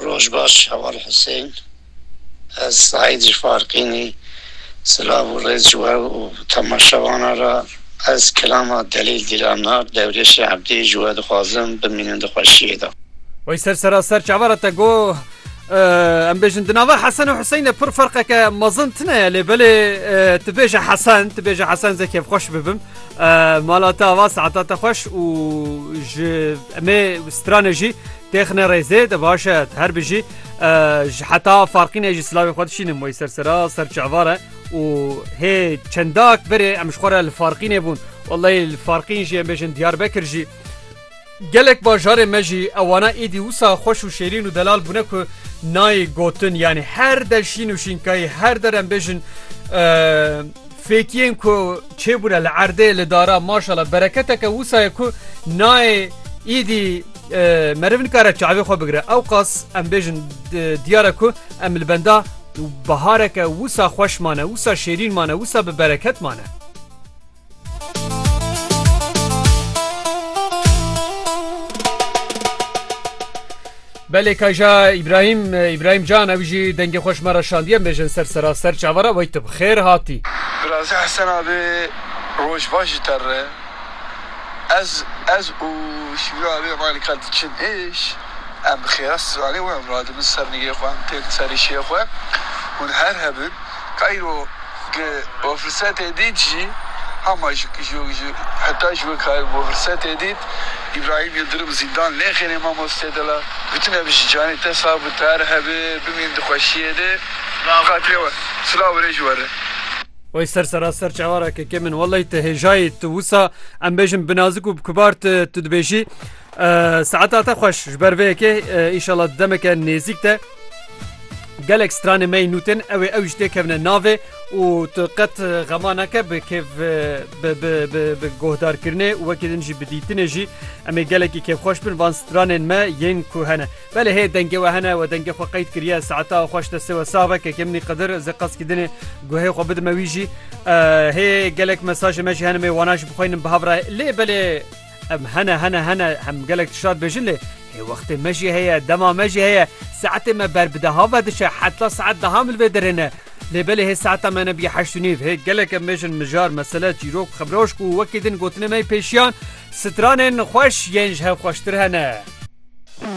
Roj baş heval Husên. Ez Saîd ji Farqînê. Silav û rêz ji we û temaşevanan re. Ez kilama Delîl Dîlanar Dewrê Şêh Ebdî ji we dixwazim, bimînin di xweşiyê de. Wey ser sera ser çava re te got em bêjin di nava Hesen û Huseynê pir ferqeke mezin tine ye lê belê tu bêje Hesen tu bêje Hesen zê kêfxweş bibim mala te ava saeta te xweş û ji emê stranê jî Têxine rêzê de baş e her bijî ji heta farqîne jî silavê xwe dişînim wê ser sera ser çavar e û hê çendak berê em ji xwe re li farqînê bûn Wallahî li farqîn jî em bêjin diyar bekir jî gelek bajarê me jî ewana êdî wisa xweş û şêrîn û delal bûne ku nayê gotin yanî her de şîn û şînkayî her der em bêjin fêkiyên ku çêbûne li erdê li dara maşala bereketeke wisayê ku nayê êdî Meriv nikare çavê xwe bigire. Ewqas em bêjin diyar e ku em li benda bihareke wisa xweş mane, wisa şêrîn mane, wisa bi bereket mane. Belê kaja İbrahim İbrahim Can ev jî dengê xweş me re şandiye mêjin ser sera ser çavara wey tu bi xêr hatî. Birazê Hesen abi roj baş ji te re. Ez ez û Şîra rê ma nikar diçin êş. Em bi xêra stranê wan radibin ser nigê xwe, em tên ser êşiyê xwe. Hûn her hebin. Ka îro gi bo firsetê dît jî hema ji ji ji heta ji wê karî bo firsetê dît. Îbrahîm Yildirim zîndan nêxêne mamostê dila. Gotine bi ji canê te sax bi te re hebê, bimîn di xweşiyê de. Ka tê we. Silav rê ji we re. Oy ser sera ser çewara kekê min wellay te hêjayê tu wisa em bêjin binazik û bikubar tu tu dibêjî saeta te xweş ji ber vê yekê înşallah demeke nêzîk te gelek stranê me nûtin ew ê ew ji tê kevne navê û tu qet xema neke bi kêv bi gohdarkirinê û wekî din jî bidîtinê jî em ê gelekî kêfxweş bin van stranên me yên ku hene. Belê hê dengê we hene we dengê xwe qeyd kiriye saeta xweş destê we sax be kekê minî qidir ez ê qas kidinê guhê xwe bidime wî jî hê gelek mesajê me jî hene me wana jî bixweynin bi hav re lê belê em hene hene hene hem gelek tişat bêjin lê hê wextê me jî heye dema me jî heye saetê me ber bide hav ve dişe heta saet daha min vê dirêne lê belê hê saeta me ne biye heşt û nîv hê gelek em bêjin mijar mesele çîrok xebroşk û wekî din gotinê me pêşiyan stranên xweş yên ji hev xweştir hene.